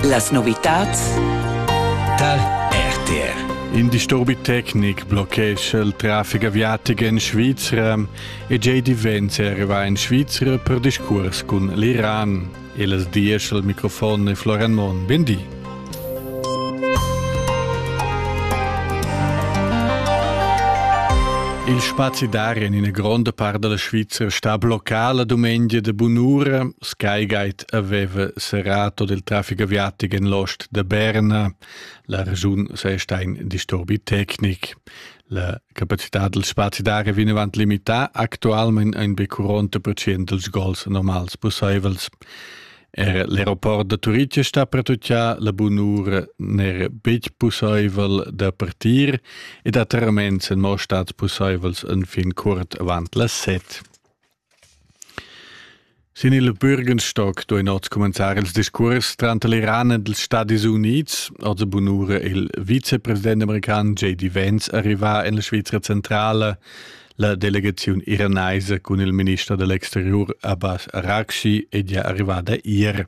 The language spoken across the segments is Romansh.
Las novitads tar RTR. In disturbi tecnic blochescha il traffic aviatic en Svizra e J. Vance arriva in Svizra per discurs cun l'Iran. E las diesch al microfon e Florian Monn. Bindi. Il spazi d'aria in ina gronda part della Svizzera sta bloccà la domedia de bunura. Skygate aveva serrato del traffic aviatic en l'ost de Berna. La regiun sei sta in disturbi tecnic. La capacità del spazi d'aria viene avanti limità, actualmente ein be 40% dels gols normals posseivels. Er l'aeroport da Turitg è stà pertutgà, la bunura n'era betg pussaivel da partir ed atterraments èn mo stads pussaivels enfin curt avant las set. Sin il Bürgenstock duein oz cumenzar ils discurs tranter l'Iran ed ils Stadis Unids, also bunura il vicepresident american JD Vance arriva en la Svizra centrala, La delegaziun iranaisa cun il minister dell'exterior Abbas Araghchi è gia arrivada ier.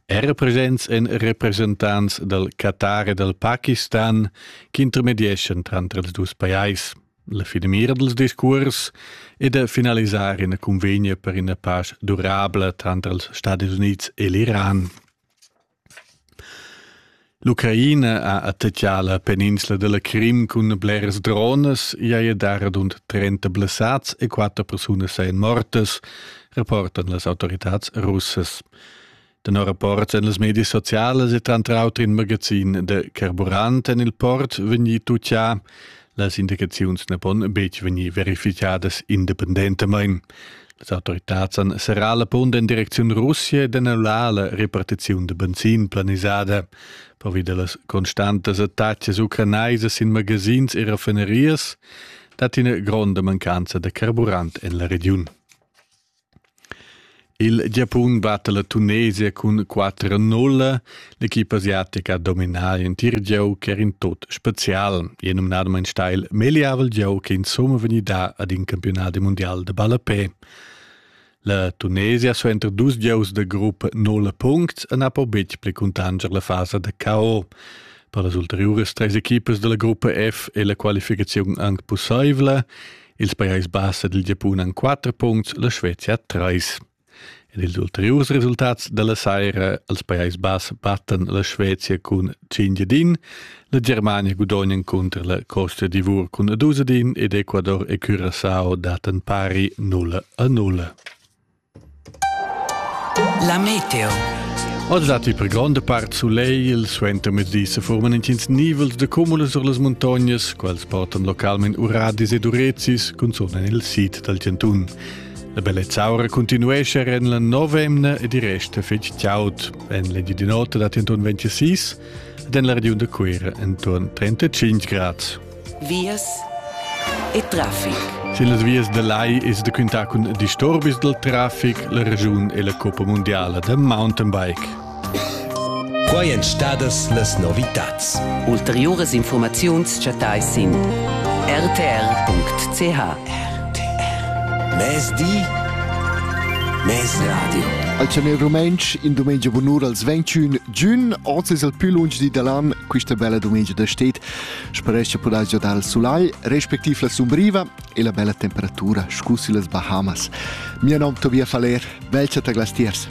Er presents en representants dal Qatar e dal Pakistan ch'intermedieschan tranter els dus pajais. La finamira dals discurs è da finalisar ina convegna per ina pace durabla tranter els Stadis Unids e l'Iran. L'Ucraina ha attachà la peninsla da la Crim cun bleras dronas, i haja dà radund trenta blessads e quatter persunas sajan mortas, rapportan las autoritads russas. Tenor rapports en las medias socialas è tranter auter in magazin da carburant en il port vegnì tutgà. Las indicaziuns na pon betg vegnir verifitgadas independentamain. Les autoritads han serrà la punt en direcziun Russia ed annullar la repartiziun da benzin planisada. Pervi da las constantas attacas ucranaisas in magazins e raffinerias dat ina gronda mancanza da carburant en la regiun. Il Giapun batta la Tunesia cun quatter a nulla. L'equipa asiatica ha dominà l'entir gieu ch'era in tut spezial. E numnadamain steil megliavel gieu che insumma vegnida ad in campiunat mundial de ballapé. La Tunesia suenter dus gieus da gruppa nulla puncts e n'ha po betg pli cuntanscher la fasa da KO. Per las ulteriuras treis equipas dalla gruppa F è la qualificaziun anc pussaivla. Ils Pajais Bass ed il Giapun han quatter puncts, la Svezia trais. Ed ils ulteriurs resultats dalla saira als Pajais Bass battan la Svezia cun 5 din, la Germania gudognan cunter la Costa d'Ivor cun 12 din ed Ecuador e Curaçao datan pari 0 a 0. La meteo. Oz dat per gronda part sulegl, suenter mezdi se forman intgins nivels de cumulas sur las montagnas, quals portan localment uradis ed urezis, cunzun en il sid dal Cantun. La bellezza aura continuesce en la novemna ed i resta fetg tiaut. En l'edi di notte dat entorn 26 ed en la regiun de Cuira entorn 35 grads. vias e traffic. Las vias da lai es da quintar cun disturbis dal traffic la regiun e la Coppa Mundiala da mountainbike. Qua èn stadas las novitats. Ulteriuras informaziuns chattais sin rtr.ch. RTR. Mezdi, mezradio. Al Chanel Rumantsch in dumengia bunur als 21 giun. Oz es el più lunsch di da l'an, quista bella dumengia da stet. Sperescha pudais giodar il sulai, respectiv la sumbriva e la bella temperatura, scusi las Bahamas. Mio nom Tobias Faller, velcha ta glastiers.